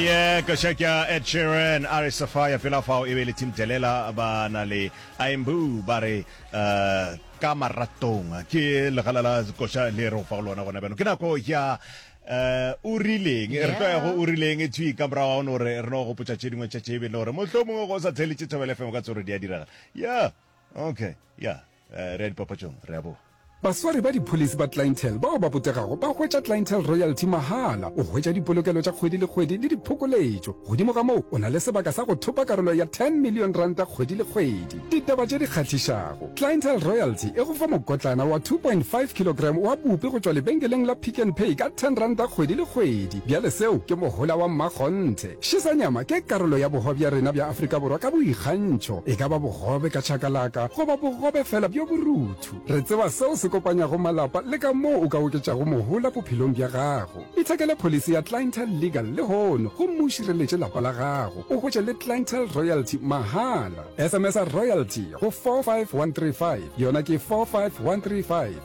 Ye ka check ya Ed Sheeran, a re Sapphire, pela fao e be e le Tim Delela, ba na le I Am Boo, ba re Ka Maratong. Ke legala la koša le re go fa go lona gona bjano. Ke nako ya O Rileng. Re tlo ya go O Rileng thwi ka morago ga no re re no gopotša tše dingwe tša tše e be le gore mohlomongwe ge o sa theeletše Thobela FM o ka tsebe gore di a diragala. Yeah, okay, yeah. Re ya dipapatšong, re a boa. Baswari ba dipholisi ba Clientele bao ba botegago ba hwetša Clientele Royalty mahala. O hwetša dipolokelo tša kgwedi le kgwedi le diphokoletšo. Godimo ga moo, o na le sebaka sa go thopa karolo ya R10 million kgwedi le kgwedi. Ditaba tše di kgahlišago, Clientele Royalty e go fa mokotlana wa 2.5 kilogram wa bupi go tšwa lebenkeleng la Pick n Pay ka R10 kgwedi le kgwedi. Bjale seo ke mohola wa mmakgonthe. Ši sa nyama ke karolo ya boho bja rena bja Afrika Borwa ka boikgantšho, e ka ba bogobe ka chakalaka goba bogobe fela bjo boruthu. Re tseba seo se kopanyago malapa le ka moo o ka oketšago mohola bophelong bja gago. Ithekele pholisi ya Clientele Legal lehono gomme o šireletše lapa la gago, o hwetše le Clientele Royalty mahala. SMS-a Royalty go 45135, yona ke 45135.